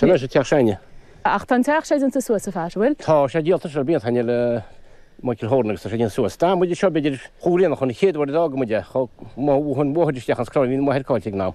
Sin é sé teach sin. Ach tá an teach sin déanta suas ar fad, bhfuil? Tá sé déanta suas blianta ó shin ag Michael Horan agus tá sé déanta suas. D'fhan muid anseo b'fhéidir chomh grianach chun an chéad uair a d'fhága muid é. Chomh maith a bhuail an bóthar isteach an scroll bhí mo mháthair caillte ag an am.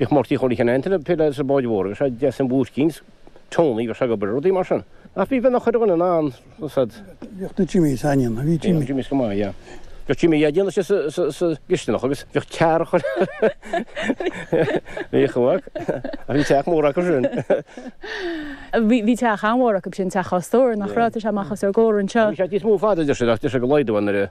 Bhíodh Murtaí Chorn Chinn Antain ag plé le báid mhóra agus sé ag déanamh púcáin is Tony agus sé ag obair a rudaí mar sin. Ach bhí bean a chuir daoine in ann. Bhíodh do Jimmy is ainneoin a bhí Jimmy. Bhíodh Jimmy is go maith yeah. Bhíodh Jimmy yeah déanadh sé sa gcisteanach agus bhíodh tear a chuir Bhíodh a mhac ach bhí teach mór acu sin. Bhí teach an-mhór acu b'shin teach dhá stór nach raibh tá sé amach os ár gcomhair anseo. Bhí sé píosa mór fada deir sé ach deir sé go laghdóidh an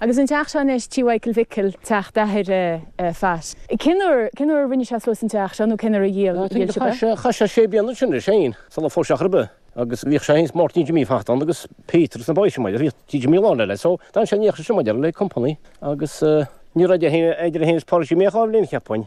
Agus an teach seo anois, Tí Mhichael Mhicil, teach d'athar Pat. Cén uair, cén uair a rinne sé suas an teach seo nó cén uair a dhíol, dhíol sibh é? Chaith sé sé bliana ansin anois fhéin sul a phós sé ar chor ar bith agus bhíodh sé fhéin 's Máirtín Jimí Phat ann agus Peter agus na boys sin, bhuel bhíodh Tí Jimí lán le le so d'fhan sé an oíche sin, maidir le company agus eh ní raibh sé fhéin, é fhéin 's Pádraig Jimí a' Gháibhléin cheapfainn.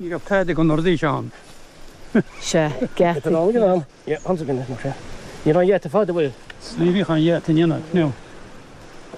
Ní raibh cead ag an Nordis ann. Sea, geata. Ní raibh an gheata fada, bhuel. Ní bhíodh an gheata in aon cheo.